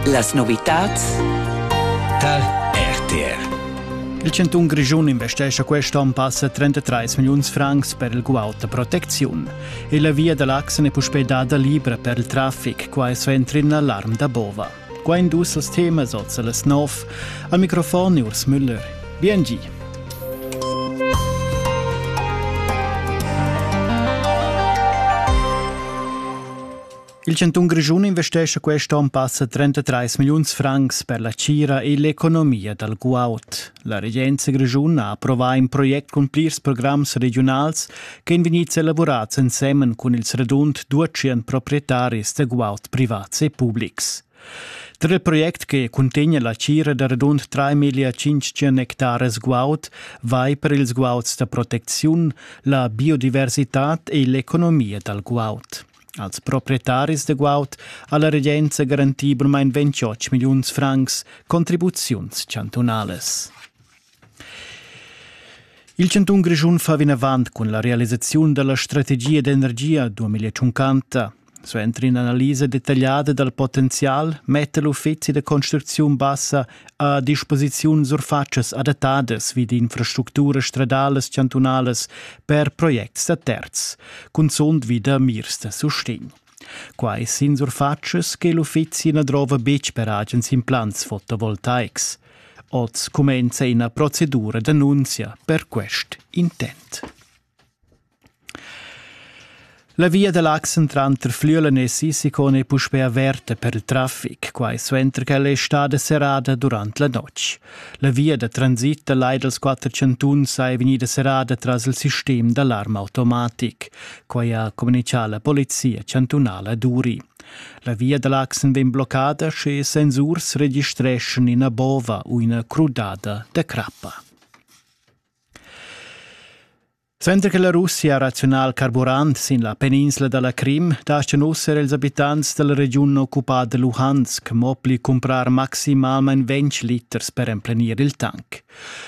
Las novitads tar RTR. Il cantun Grischun investescha quest onn passa 33 milliuns francs per il guaud da protecziun. E la via da l'Axen è puspè dada libra per il traffic, quai so entri in alarm da bova. Qua in dus als temas oz a las nov. Al microfon Urs Müller. Biengi. Il chantun Grischun investescha quest onn passa 33 milliuns francs per la tgira e l'economia dal guaud. La regenza grischuna ha approvà in project cun plirs programs regiunals ch'èn vegnids elaborads ensemen cun ils radund 200 proprietaris da guaud privats e publics. Tra il project che cuntegna la tgira da radund 3.500 hectares guaud vai per ils guauds da protecziun, la biodiversitad e l'economia dal guaud. Als proprietaris da guaud ha la regenza garantì burmain 28 milliuns francs contribuziuns chantunalas. Il chantun Grischun fa vinavant cun la realisaziun della strategia d'energia 2050. Suenter in'analisa dettagliada dal potenzial metta l'uffizi da construcziun bassa a disposiziun surfatschas adattadas vid infrastructuras stradalas chantunalas per projects da terz, cunzunt vi da mirs da sustegn. Quai sin surfatschas che l'uffizi na drova betg per agens implants fotovoltaics. Oz cumenza ina procedura d'annunzia per quest intent. La via da l'accent tranter Flüelen e Sissikon è puspè averta per il traffic, quai suenter ch'ella è stada serrada durant la notg. La via da transit da lai dals quatter chantuns è vegnida serrada tras il sistem d'alarm automatic. Quai ha communitgà la polizia chantunala Duri. La via da l'accent vegn bloccada sche sensurs registreschan ina bova u ina crudada da crappa. Suenter che la Russia ha razional carburant sin la peninsla da la Crim daschan uss er ils abitants da la regiun occupada Luhansk mo pli cumprar maximalmain ventg liters per emplenir il tanc.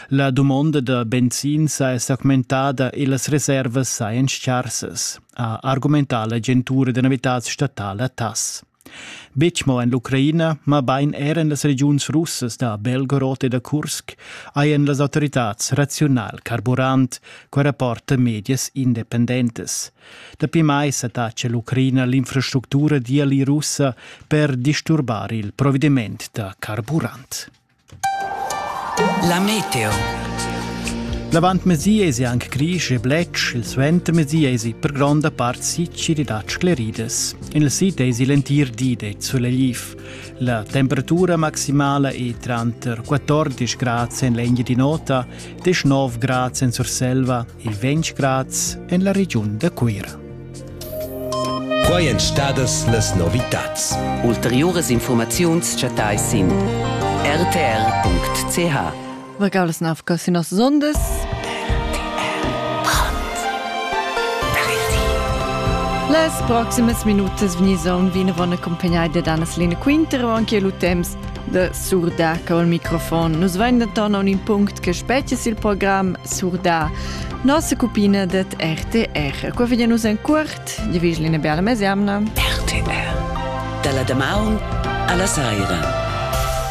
La dumonda da benzin sa è s'augmentada e las reservas sajan scharsas, ha argumentà l'agentura da novitads statala TASS. Betg mo en l'Ucraina, mabain er en las regiuns russas da Belgorod e da Kursk hajan las autoritads raziunal carburant qua rapporta medias independentas. Dapi mai s'attaccia l'Ucraina l'infrastructura d'IALI russa per disturbar il provediment da carburant. La meteo. L'avantmezì esi anc grisch e bletsch, il suentermezì esi per gronda part sicir ed scleridas. Il sid esi l'entir di de sulegliv. La temperatura maximala è tranter 14 grad en l'egna di nota, 19 grad en Surselva e 20 grad en la regiun da Cuira. Quai èn stadas las novitads. Ulteriuras infurmaziuns chattais sin rtr.ch. Regaulas nav casinos sondes. Las proximas minutas vegnisan vinavon accompagnai da Danas Lena Quintero anche lu temps da surdar col microfon. Nus vain denton aun in punct che species il program surdar nossa cupina det RTR. Qua veglia nus en curt, di vigli eine bella mesiamna. RTR. Dalla damaun alla saira.